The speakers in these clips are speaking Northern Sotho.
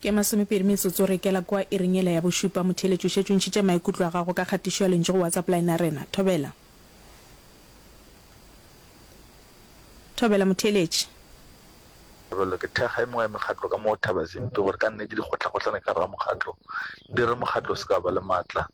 Ke masomepedi metsotso re ikela kwa iring yela ya bošupa. Motheeletši o šetše o ntšhitše maikutlo a gago ka kgatišo ya lentšu go WhatsApp line ya rena. Thobela. Thobela, motheeletši. Thobela, ke thekga e mengwe ya mekgatlo ka mo Thabazimbi gore ka nnete dikgotlakgotlana ka gare ga mokgatlo di re mokgatlo o se ka ba le maatla.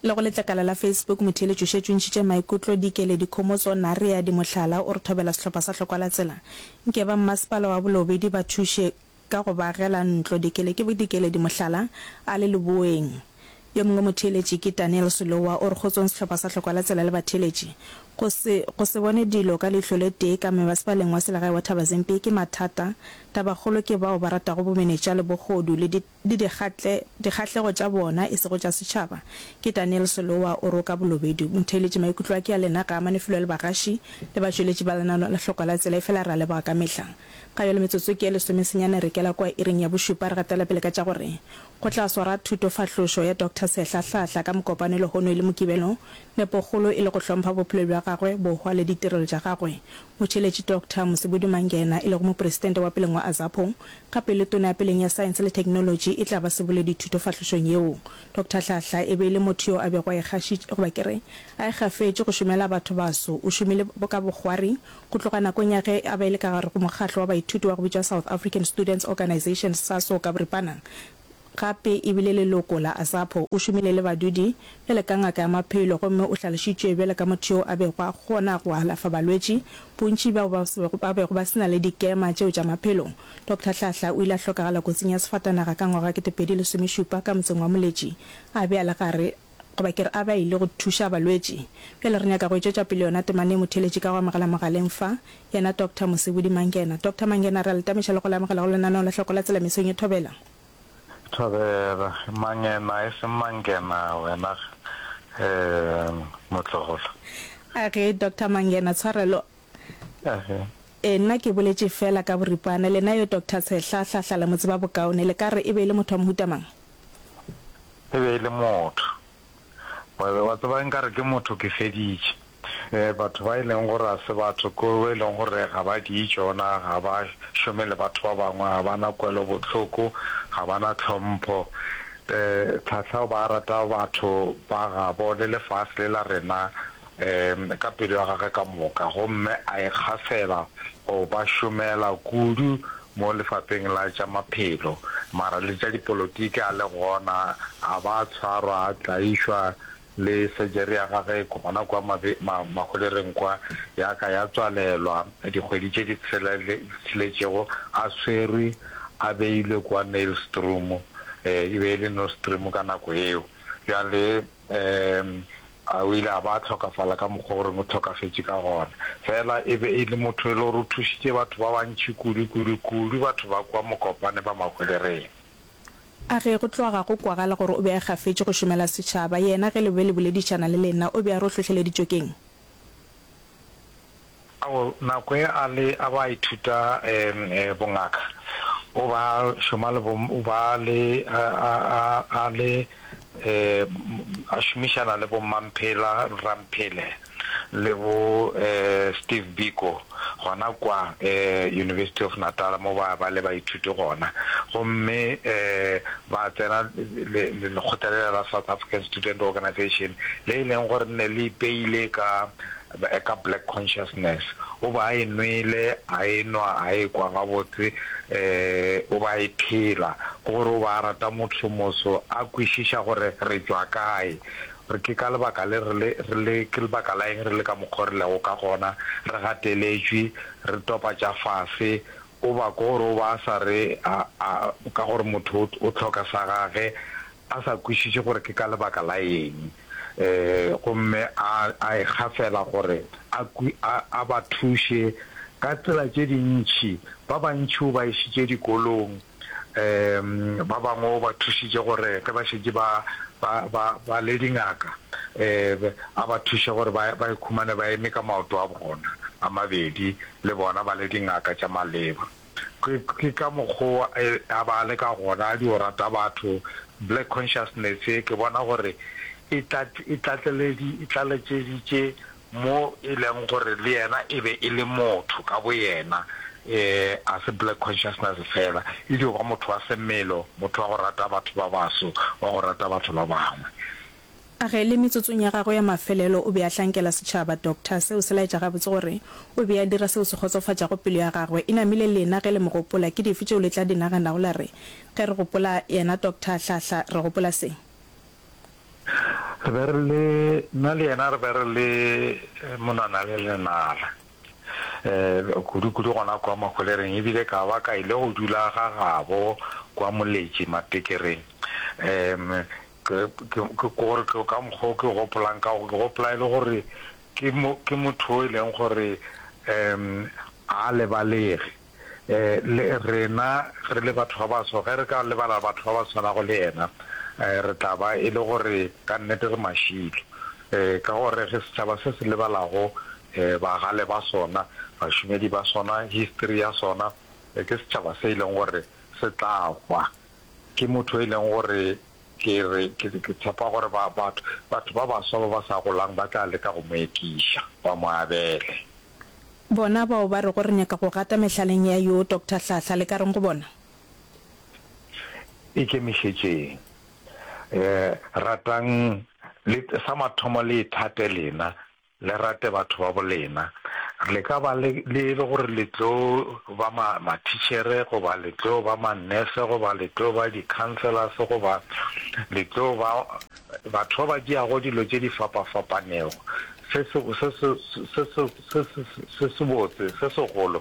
Le go letlakala la Facebook, motheeletši o šetše o ntšhitše maikutlo, dikele, dikhomotšo, narea, di mohlala. O re thobela sehlopha sa Hlokwa-la-tsela. Nke ba mmasepala wa Bolobedi ba thuše ka go ba agela ntlo. Dikele ke dikele, di mohlala, a le leboeng. Yo mongwe motheeletši ke Daniel Sulowa o re go tsweng sehlopha sa Hlokwa la Tsela le batheeletši go se go se bone dilo ka leihlo le tee ka mebasepaleng wa selegae wa Thabazimpi ke mathata. Tabakgolo ke bao ba ratago bomenetša le bogodu le di le dikgatle dikgahlego tša bona e sego tša setšhaba ke Daniel Sulowa o re o ka bolobedu motheeletši maikutlo a ke a lena ga a amane felo le bagaši le batšweletši ba lenano la Hlokwa la Tsela efela re a leboga ka mehla. Ga yo le metsotso ke e lesomesenyane re kela kua iring ya bošupa re gatela pele ka tša gore Go tla swara thutofahlošo ya Doctor Sehla Hlahla ka mokopane lehono e le Mokibelo. Nepokgolo e le go hlompha bophelo bja gagwe, bohwa le ditirelo tša gagwe. Motšheletši Doctor Mosibudu Mangena e lego Mopresidente wa peleng wa Azapo, ka pele Tona ya peleng ya Saense le Theknolotši e tla ba seboledi thutofahlošong yeo. Doctor Hlahla e be e le motho yo a bego a ikgašitše, goba ke re, a ikgafetše go šomela batho baso. O šomile ka bokgwari, Go tloga nakong ya ge a ba e le ka gare go mokgatlo wa baithuti wa go bitšwa South African Students Organisation, Saso ka boripana, gape e bile leloko la Asapo, o šomile le badudi bjale ka ngaka ya maphelo gomme o hlalošitšwe bjale ka motho yo a bego a kgona go alafa balwetši bontši bao ba bego ba se na le dikema tšeo tša maphelo. Doctor Hlahla o ile a hlokagala kotsing ya sefatanaga ka ngwaga wa kete pedi lesomešupa ka motseng wa Moletši a be a le gare goba ke re a ba ile go thuša balwetši. Bjale re nyaka go e tšwetša pele yona temana e mo theeletše ka go amogela mogaleng fa, yena Doctor Mosebudi Mangena. Doctor Mangena, re a le tameša le go le amogela go lenaneo la Hloko la Tsela mesong e Thobela. Thobela, Mangena e seng Mangena wena um motlogolo. Age, Doctor Mangena, tshwarelo. Age. E, nna ke boletše feela ka boripana. Lena yo Doctor Tshehla, Hlahla le mo tseba bokaone, le ka re e be e le motho wa mohuta mang? e be e le motho. Wa tseba nkare ke motho ke feditše. Batho ba e leng gore ga se batho ke bo e leng gore ga ba di tšona, ga ba šome le batho ba bangwe, ga ba na kwelobohloko, ga ba na tlhompho. Tlhahla o ba rata batho ba gabo le lefase le la rena. ka pelo ya gagwe ka moka gomme a ikgafela go ba šomela kudu mo lefapheng la tša maphelo, mara le tša dipolotiki a le gona, a ba a tshwarwa, a tlaišwa, le surgery ya gagwe gona kwa maholereng kwa ya ka ya tswalelwa dikgwedi tše di tsheletšego a swerwe a beilwe kwa Nailstroom, e be e le Nostrum ka nako yeo. Bjale. Ee, o ile a ba a hlokafala ka mokgwa o reng o hlokafetše ka gona. Fela e be e le motho e le gore o thušitše batho ba bantši kudu, kudu, kudu batho ba kua Mokopane ba Mahwelereng. A ge go tloga go kwagala gore o be a gafetše go šomela setšhaba, yena ge le be le boledišana le lena o be a re o hlohleleditšwe ke'ng? Ao nako e a le a ba ithuta bongaka, o ba šoma le bo ba le a a a a le a šomišana le bo Mmamphela Rramphele le bo Steve Biko. gona kwa University of Natal mo ba ba le baithuti gona, gomme ba tsena lekgotla lela la South African Student Organization le e leng gore ne le ipeile ka ka Black Consciousness. O be a e nwele, a e nwa, a e kwa gabotse, o be a e phela. Ke gore o be a rata motho moso, a kwešiša gore re tšwa kae. Re ke ka lebaka le re le, re le, ke lebaka la eng re le ka mokgo re lego ka gona, re gateletšwe, re topa tša fase, o ba ko gore o ba a sa re a, a, ka gore motho o, o hloka sa gage, a sa kwešiše gore ke ka lebaka la eng, e, gomme a, a ekga feela gore a, a, a ba thuše ka tsela tše dintši, ba bantši o ba išitše dikolong. um ba bangwe o ba thušitše gore ge ba šetše ba ba ba ba le dingaka um a ba thuše gore ba ba ikhumane ba eme ka maoto a bona a mabedi le bona ba le dingaka tša maleba ke ke ka mokgowa e, a ba le ka gona di o rata batho black consciousness ke bona gore e tlatleledi e tlaletšeditše mo e leng gore le yena e be e le motho ka boyena, e, ga se black consciousness fela, e dio ba motho wa semelo, motho wa go rata batho ba baso, wa go rata batho ba bangwe. A re le metsotsong ya gagwe ya mafelelo o be a hlankela setšhaba, Doctor, seo se laetša gabotse gore o be a dira seo se kgotsofatšago pelo ya gagwe. E namile lena ge le mo gopola, ke dife tšeo le tla di naganago la re, Ge re gopola yena Doctor Hlahla, re gopola se? Re be re le, nna le yena re be re le monwana le lenala, um kudukudu gona kua Mahwelereng, e bile ka ba ka ile go dula ga gabo kua Moletši Matekereng. Um ke, ke, ke gore ke ka mokgwa o ke gopolang ka go, ke gopola e le gore ke mo, ke motho o e leng gore um ga a lebalege. Le rena re le batho ba baso, ge re ka lebala batho ba ba swanago le yena, re tla ba e le gore ka nnete re mašilo. Ka gore re setšhaba se se lebalago bagale ba sona, bašomedi ba sona, histori ya sona, ke setšhaba se e leng gore se tla hwa. Ke motho yo e leng gore ke re, ke tshepa gore batho ba baswa ba ba sa golang ba tla leka go mo ekiša, ba mo abele. Bona bao ba rego re nyaka go gata mehlaleng ya yo Doctor Hlahla, le ka reng go bona? Ikemišetšeng. Ratang le, sa mathomo le ithate lena, le rate batho ba bolena. Le ka ba le, le e le gore le tlo ba ma, mathitšhere, goba le tlo ba ma-nurse, goba le tlo ba di-councillors, goba le tlo ba Batho ba ba tšeago dilo tše di fapa-fapanego se sebotse, se segolo,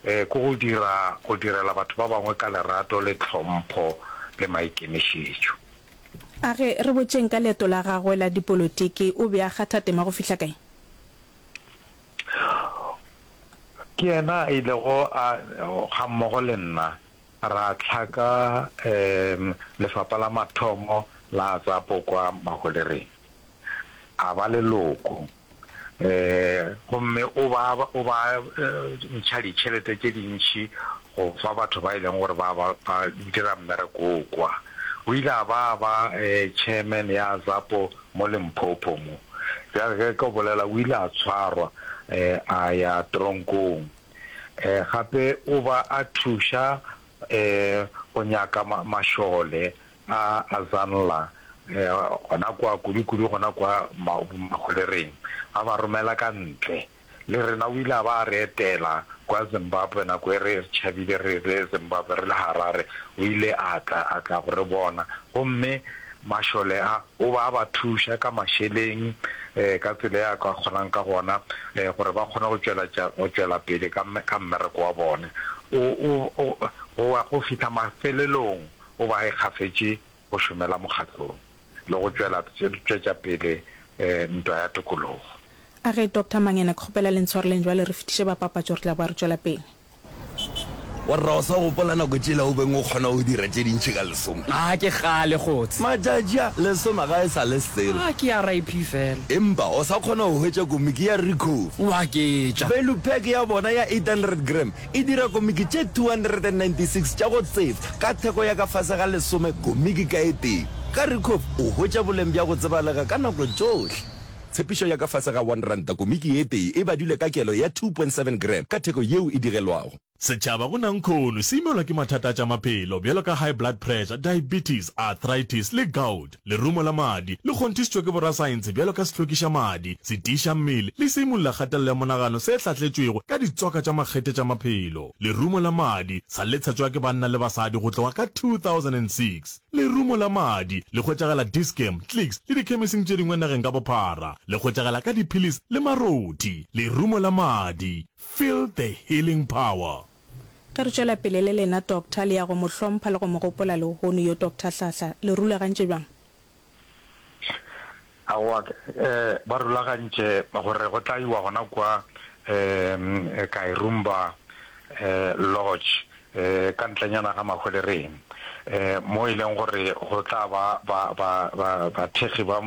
ke go dira, go direla batho ba bangwe ka lerato le tlhompho le maikemišetšo. A re re botšeng ka leeto la gagwe la dipolotiki. O be a kgatha tema go fihla kae? Ke yena a ilego a, gammogo le nna, Ra hlaka lefapa la mathomo la Azapo kwa Maholereng, a ba leloko gomme o ba o ba ntšha ditšhelete tše dintši go fa batho ba e leng gore ba ba ba dira mmereko wo kwa. O ile a ba a ba chairman ya Azapo mo Limpopo mo. Bjale ge ke bolela o ile a tshwarwa a ya teronkong. Gape o ba a thuša go nyaka mašole a Azanla, gona kwa kudukudu gona kwa Mahwelereng, a ba romela ka ntle. Le rena o ile a ba a re etela kwa Zimbabwe nako e re tšhabile re le Zimbabwe, re le Harare, o ile a tla go re bona gomme Mašole a, o be a ba thuša ka mašeleng ka tsela e a ka kgonang ka gona gore ba kgone go tšweletša go tšwela pele ka ka mmereko wa bone. O, o, o, go wa go fihla mafelelong o be a ikgafetše go šomela mokgatlong le go tšwela tšwetša pele ntwa ya tokologo. A Ge Doctor Mangena, ke kgopela le ntshwareleng jwale re fetiše ba papatšo re tla boa re tšwela pele. Warra, o sa gopola nako tšela o beng o kgona go dira tše dintši ka lesome? A ke kgale, Kgotshe. Matšatši a, lesome ga e sa le selo. A ke ya RIP fela. Empa o sa kgona go hwetša komiki ya Ricoh? Wa ke tša. Value pack ya bona ya 800 gram e dira komiki tše 296 tša go tseba, ka theko ya ka fase ga lesome komiki ka e tee. Ka Ricoh o hwetša boleng bja go tsebalega ka nako tšohle. Tshepišo ya ka fase ga R1, komiki ye tee e badilwe ka kelo ya 2.7 gram ka theko yeo e digelwago. Setšhaba go Nankhono se imelwa ke mathata a tša maphelo bjalo ka high blood pressure, diabetes, arthritis le gout. Lerumo la madi le kgonthišitšwe ke borasaentshe bjalo ka sehlokiša madi, setiiša mmele le seimolola kgatelelo ya monagano se hlatletšwego ka ditswaka tša makgethe tša maphelo. Lerumo la madi sa letshetšwa ke banna le basadi go tloga ka 2006. Lerumo la madi le hwetšagala Dischem, Clicks le dikhemesing tše dingwe nageng ka bophara. Le hwetšagala ka diphilisi le marothi. Lerumo la madi, feel the healing power. Ge re tšwela pele le lena Doctor, le ya go mo hlompha le go mo gopola lehono yo Doctor Hlahla. Le rulagantše bjang? Aowa, ba rulagantše gore go tla iwa gona kua Kairumba Lodge, ka ntlenyana ga Mahwelereng, mo e leng gore go tla ba bathekgi ba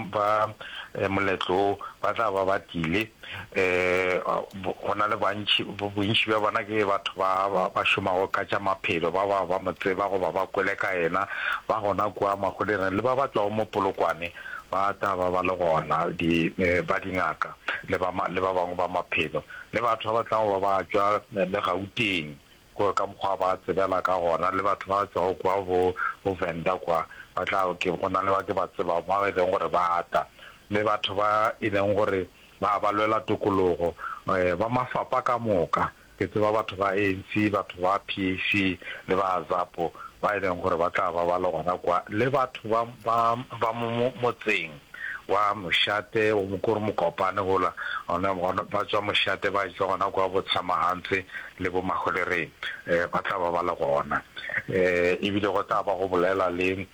moletlo wo ba tla ba ba tlile. Ee, go na le bantši, bontši bja bona ke batho ba ba šomago ka tša maphelo, ba bao ba mo tseba goba ba kwele ka yena, ba gona kua magolereng le ba ba tšwago mo Polokwane ba tla ba ba le gona, di, ba dingaka le ba, le ba bangwe ba maphelo le batho ba ba tlago ba ba tšwa le Gauteng. gore ka mokgwa ba tsebela ka gona, le batho ba tšwago kwa bo, bo Venda kwa, ba tla, ke, go na le ba ke ba tsebago, bao e lego gore ba ata, le batho ba e lego gore ba, ba lwela tokologo, um, ba mafapa ka moka, ke tseba batho ba ANC, batho ba PAC, le ba Azapo, ba e lego gore ba tla ba ba le gona kwa, le batho ba, ba, ba mo, mo, motseng. wa mošate o mo kore mokopane gola ona gona ba tswa mošate ba tšwa gona kwa bo tshamahantswe le bo maholereng eh, ba tla ba ba le gona eh, ebile go tla ba go bolela le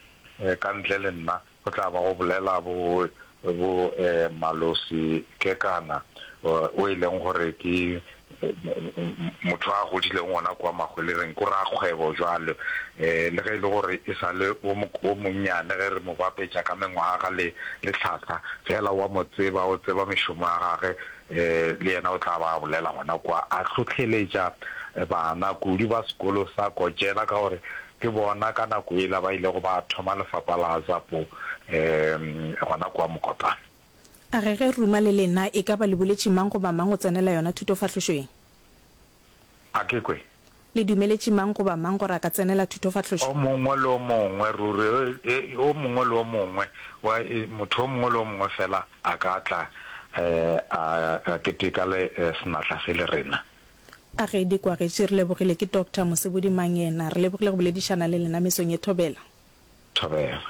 eh, ka ntle le nna go tla ba go bolela bo bo eh, malosi kekana eh, o e leng gore ke motho a godileng gona kwa Mahwelereng ko rakgwebo jwale um le ge e le gore e sa le o monnyane ge re mo bapetša ka mengwaga le le tlhahla fela wa mo tseba o tseba mešomo ya gage um le yena o tla ba a bolela gona kwa a hlohleletša bana kudu ba sekolo sa Kotšela ka gore ke bona ka nako e la ba ilego ba thoma lefapha la Zapo um gona kwa Mokopane. A re ge ruma le lena e ka ba le boletše mang goba mang go tsenela yona thutofahlošoeng? A ke kwe. Le dumeletše mang goba mang gore a ka tsenela thutofahlošo? O mongwe le o mongwe, ruri o mongwe le o mongwe, wa, motho o mongwe le o mongwe feela a ka tla a, a keteka le senatla se le rena. A re di kwagetše, re lebogile ke Doctor Mosebodi Mangena. Re lebogile go boledišana le lena mesong ye thobela. thobela.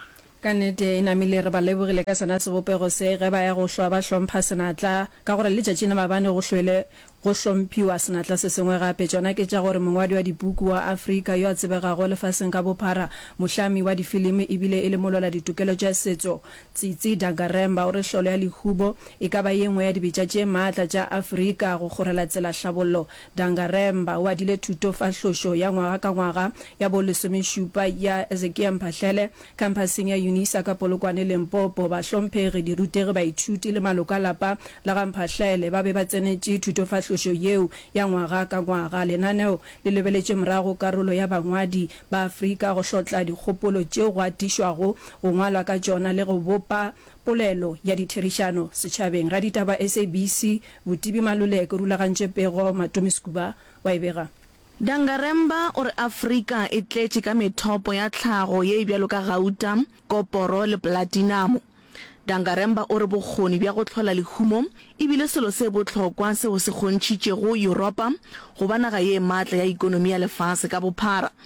Ka nnete, e namile, re ba lebogile ka sona sebopego se, ge ba ya go hlwa ba hlompha senatla, ka gore letšatšing la mabane go hlwele go hlomphiwa senatla se sengwe gape. Tšona ke tša gore mongwadi wa dipuku wa Afrika yo a tsebegago lefaseng ka bophara, mohlami wa difilimi e bile e le molwela-ditokelo tša setso, Tsitsi Dangarembga o re hlolo ya Lehubo e ka ba ye nngwe ya dibetša tše matla tša Afrika go kgorela tsela hlabollo Dangaremba o adile thuto fa hlošo ya ngwaga ka ngwaga ya bo lesomešupa ya Ezekia Mphahlele Kampaseng ya Unisa ka Polokwane, Limpopo. Bahlomphegi, dirutegi, baithuti le maloko a lapa la ga Mphahlele ba be ba tsenetše thuto fa hlošo yeo ya ngwaga ka ngwaga. Lenaneo le lebeletše morago karolo ya bangwadi ba Afrika go hlotla dikgopolo tšeo go atišwago go ngwalwa ka tšona le go bopa Polelo ya ditherišano setšhabeng ga ditaba SABC Botibi Maluleke rulagantše pego Matomi Skuba wa e bega. Dangaremba o re Afrika e tletše ka methopo ya tlhago ye e bjalo ka gauta, koporo le platinamo. Dangaremba o re bokgoni bja go hlola lehumo e bile selo se bohlokwa seo se kgontšhitšego Yuropa go ba naga ye matla ya ikonomi ya lefase ka bophara.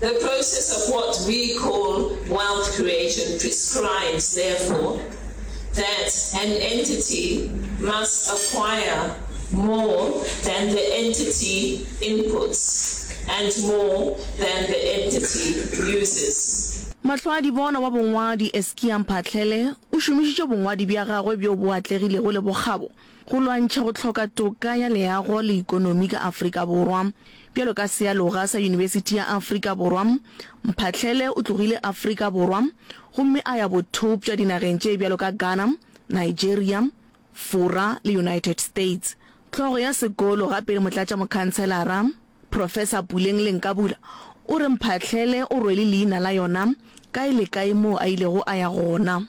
The process of what we call wealth creation prescribes, therefore, that an entity must acquire more than the entity inputs and more than the entity uses. Mahloadibona wa bongwadi Eskia Mphahlele o šomišitše bongwadi bja gagwe bjo bo atlegilego le bokgabo Go lwantšha go hloka toka ya leago le ikonomi ka Afrika Borwa. Bjalo ka sealoga sa Yunibesithi ya Afrika Borwa, Mphahlele o tlogile Afrika Borwa gomme a ya bothopša dinageng tše bjalo ka Ghana, Nigeria, Fora le United States. Hlogo ya sekolo gape le motlatšamokhanselara, Professor Puleng Lenkabula o re Mphahlele o rwele leina la yona kae le kae moo a ilego a ya gona.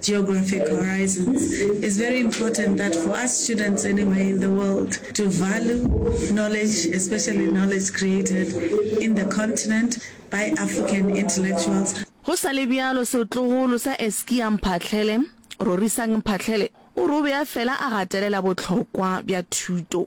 Geographic horizons is very important that for us students anyway in the world to value knowledge especially knowledge created in the continent by African intellectuals. Go sa le bjalo setlogolo sa Eskia Mphahlele, Rorisang Mphahlele, o re o be a fela a gatelela bohlokwa bja thuto.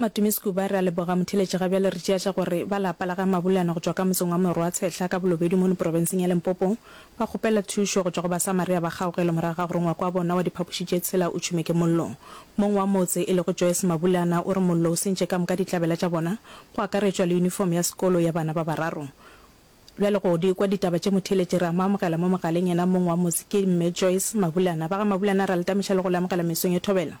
Matumisi Kuba, re a leboga motheeletši ga bjale re tšea tša gore ba lapa la ga Mabulana go tšwa ka motseng wa Morwatshehla ka Bolobedu mono porofenseng ya Limpopo ba kgopela thušo go tšwa go Basamaria ba kgaogelo morago ga gore ngwako wa bona wa diphapoši tše tshela o tšhume ke mollo. Mong wa motse e lego Joyce Mabulana o re mollo o sentše ka moka ditlabela tša bona go akaretšwa le uniform ya sekolo ya bana ba bararo. Bjale go di kwa ditaba tše motheeletši re a mo amogela mo mogaleng yena mong wa motse ke Mme Joyce Mabulana. Ba ga Mabulana re a le tamiša le go le amogela mesong ye thobela.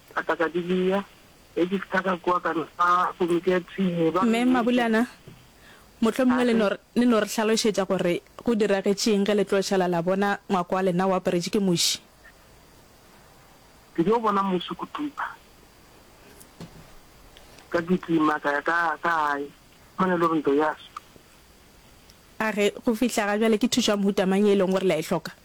Ka tla ka di bea, ge ke fihla ka kua ka nwa komiki ya thwii. Ba Mme re, Mabulana, mohlomongwe le no, le no re hlalošetša gore go diragetše'ng ge le tlo šala la bona ngwako wa lena o aparetše ke muši? Ke yo bona muši Kutupa. Ka kitima ka ya ka, ka gae. Mane lo re ntwa ya swa. A re, Go fihla ga bjale ke thušo ya mohuta mang ye e leng gore la e hloka?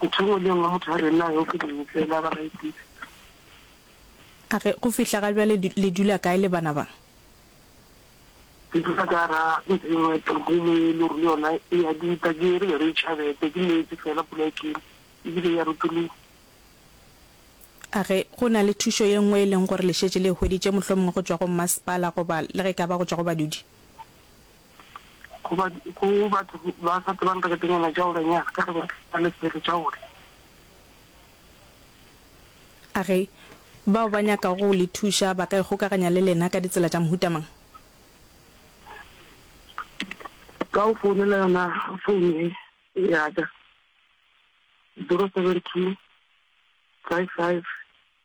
Ke thongo le nngwe motho a re nna yo ke beng fela ba ga ipitse. A re go fihla ga bjale le dula kae le bana ba? Ke dula ka ra ntlo e nngwe topo e le e lore le yona e ya dita ke re re tšhabete ke meetse fela pula e tlile ebile ya rutologa. A re go na le thušo ye nngwe e leng gore le šetše le e hweditše mohlomongwe go tšwa go mmasepala goba le ge e ka ba go tšwa go badudi? go batho ba sa tsebang reketenyana jaolenyana ka ge ba na le selo jaole. A re, Bao ba nyakago go le thuša ba ka ikgokaganya le lena ka ditsela tša mohuta mang? Ka go founela yona founu ye ya ka, 072 55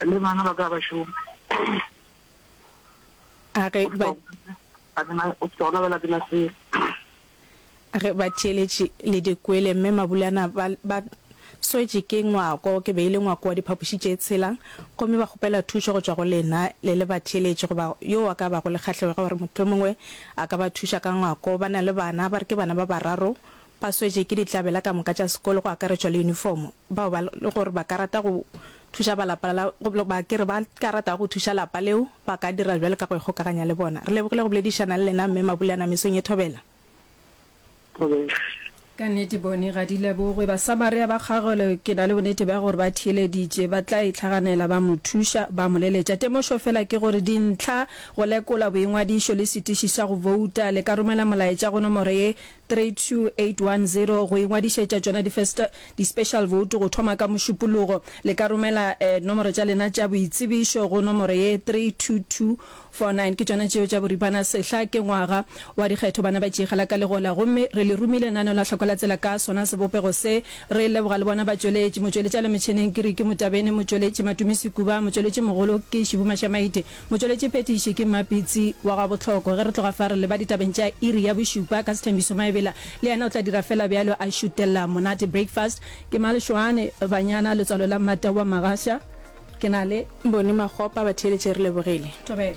Le bana ba ka ba šoma. A re ba. A ke na o se ka o labela ke na selo. A re ba theeletše le dikwele mme Mabulana ba ba swetše ke ngwako. Ke be e le ngwako wa diphapoši tše tshela gomme ba kgopela thušo go tšwa go lena le le ba theeletše goba yo a ka bago le kgahlego gore mohlomongwe a ka ba thuša ka ngwako. Ba na le bana ba re ke bana ba bararo Ba swetše ke ditlabela ka moka tša sekolo go akaretšwa le yunifomo. Bao ba le gore ba ka rata go thuša ba lapa la goba ba ke re ba ka ratago go thuša lapa leo ba ka dira bjalo ka go ikgokaganya le bona. Re lebogile go boledišana le lena Mme Mabulana mesong ye thobela. Thobela. Ka nnete bone ga di lebogwe. Basamaria ba kgagolwe ke na le bonnete bja gore ba theeleditše. Ba tla e hlaganela ba mo thuša, ba mo leletša. Temošo fela ke gore dintlha, go lekola boingwadišo le setiši sa go bouta, le ka romela molaetša go nomoro ye 32810 go ingwadišetša tšona di first di special vote go thoma ka mošupologo. Le ka romela e nomoro tša lena tša boitsebišo go nomoro ye 32249 ke tšona tšeo tša boripana sehla ke ngwaga wa dikgetho bana ba tšeegela ka legola gomme re le rumile nano la hloko la tsela ka sona sebopego se re leboga le bona batšweletši motšweletšale metšheneng ke Ricky Motabene motšweletši Matumi Sekuba motšweletši mogolo ke Shibu Mashamaite Motšweletšiphethiši ke mmapitsi wa gwa bohloko. Ge re tloga fa re leba ditabeng tša iri ya bošupa ka Sethembiso Maebela, le yena o tla dira fela bjalo, a šutella monate breakfast. Ke Malešoane Banyana, letswalo la Mmata wa Magasha. Ke na le. Bone Makgopa, batheeletši re lebogile. Thobela.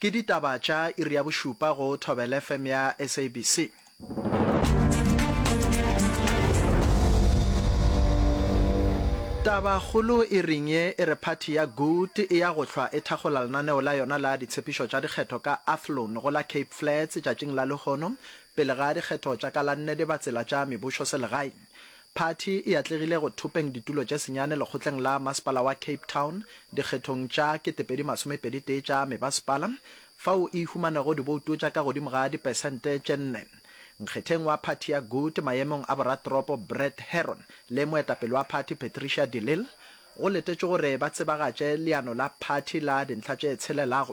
Ke ditaba tša iri ya bošupa go Thobela FM ya SABC. Tabakgolo iring ye e re phathi ya Good e ya go hlwa e thakgola lenaneo la yona la ditshepišo tša dikgetho ka Athlone go la Cape Flats tšatšing la lehono pele ga dikgetho tša ka la nne di ba tsela tša mebusho selegaeng. Phathi e atlegile go thopeng ditulo tše senyane lekgotleng la Masepala wa Cape Town dikgethong tša 2021 tša mebasepala, fao e ihumanego dibouto tša ka godimo ga dipesente tše nne. Nkgetheng wa phathi ya Good maemong a boratoropo Brett Herron le moetapele wa phathi Patricia de Lille go letetšwe gore ba tsebagatše leano la phathi la dintlha tše tshelelago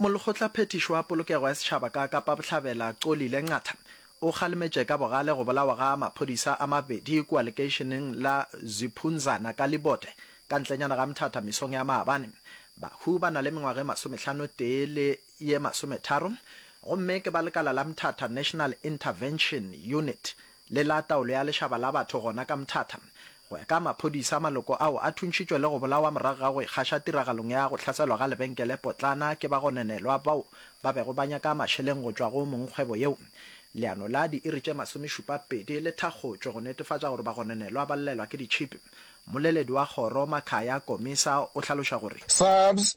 Molekgotlaphethiši wa Polokego ya Setšhaba ka Kapa Bohlabela, Xolile Nqatha, o kgalemetše ka bogale go bolawa ga maphodisa a mabedi kua lekeišeneng la Ziphunzana ka Libote, ka ntlenyana ga Mthatha mesong ya maabane. Bahu ba na le mengwaga e masomehlano tee le ye masometharo gomme ke ba lekala la Mthatha National Intervention Unit le la taolo ya lešaba la batho gona ka Mthatha. Go ya ka maphodisa, maloko ao a thuntšhitšwe le go bolawa morago ga go ikgaša tiragalong ya go hlaselwa ga lebenkele potlana ke bagononelwa bao ba bego ba nyaka mašeleng go tšwa go mong kgwebo yeo. Leano la diiri tše masomešupapedi le thakgotšwe go netefatša gore bagononelwa ba llelwa ke ditšhipi. Mmoleledi wa kgoro, Makhaya Komisa, o hlaloša gore. SAPS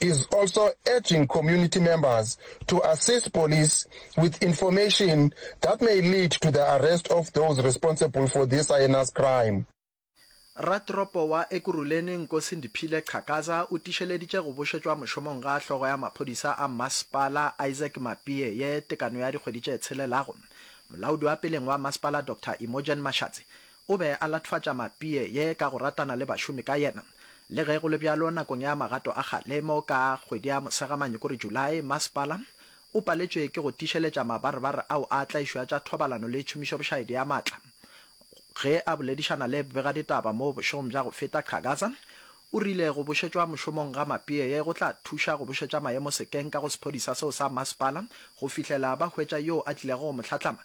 is also urging community members to assist police with information that may lead to the arrest of those responsible for this heinous crime. Ratoropo wa Ekurhuleni Nkosi Ndiphile Qhakaza o tišeleditše go bušetšwa mošomong ga hlogo ya maphodisa a masepala Isaac Mapie ye tekano ya dikgwedi tše tshelelago. Molaodi wa peleng wa masepala Doctor Imogen Mashatsi O be a lathwatša mapie ye ka go ratana le bašomi ka yena. Le ge go le bjalo, nakong ya magato a kgalemo ka kgwedi ya Mosegamanyi kore July, masepala o paletšwe ke go tiišeletša mabarebar ao a tlaišo ya tša thobalano le tšhomišobošaedi ya maatla. Ge a boledišana le bbegaditaba mo bošegong bja go feta, Qhagaza o rile go bušetšwa mošomong ga mapie ye go tla thuša go bušetša maemo sekeng ka go sephodisa seo sa masepala go fihlela ba hwetša yoo a tlilego go mo hlatlama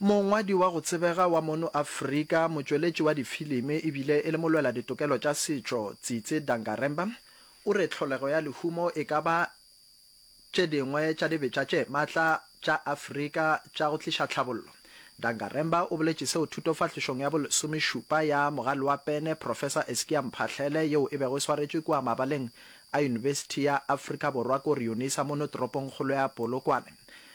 Mongwadi wa go tsebega wa mono Afrika, motšweletši wa difilimi e bile e le molwela ditokelo tša setšo Tsitsi Dangarembga o re tlholego ya lehumo e ka ba tše dingwe tša dibetša tše matla tša Afrika tša go tliša tlhabollo. Dangarembga o boletše seo thutofahlišong ya bolesomešupa ya Mogaloapene Professor Eskia Mphahlele yeo e bego e swaretšwe kua mabaleng a Yunibesithi ya Afrika Borwa ko Reunisa mono toropongkgolo ya Polokwane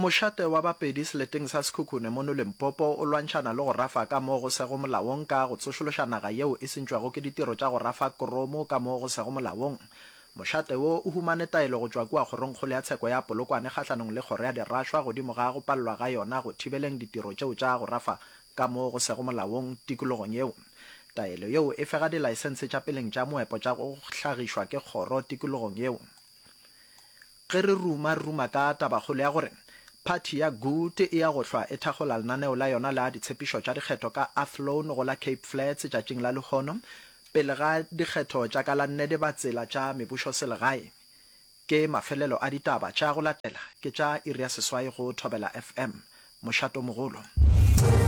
Mošate wa Bapedi seleteng sa Sekhukhune mono Limpopo o lwantšhana le go rafa ka mo go sego molaong ka go tsošološa naga yeo e sentšwego ke ditiro tša go rafa kromo ka mo go sego molaong. Mošate wo o humane taelo go tšwa kua Kgorongkgolo ya Tsheko ya Polokwane kgahlanong le kgoro ya dirašwa godimo ga go palelwa ga yona go thibeleng ditiro tšeo tša go rafa ka mo go sego molaong tikologong yeo. Taelo yeo e fega dilaesense tša peleng tša moepo tša go hlagišwa ke kgoro tikologong yeo. Ge re ruma, re ruma ka tabakgolo ya gore phathi ya Good e ya go hlwa e thakgola lenaneo la yona la ditshepišo tša dikgetho ka Athlone go la Cape Flats tšatšing la lehono pele ga dikgetho tša ka la nne le ba tsela tša mebušoselegae. Ke mafelelo a ditaba tša go latela ke tša iri ya seswai go Thobela FM. Mošatomogolo.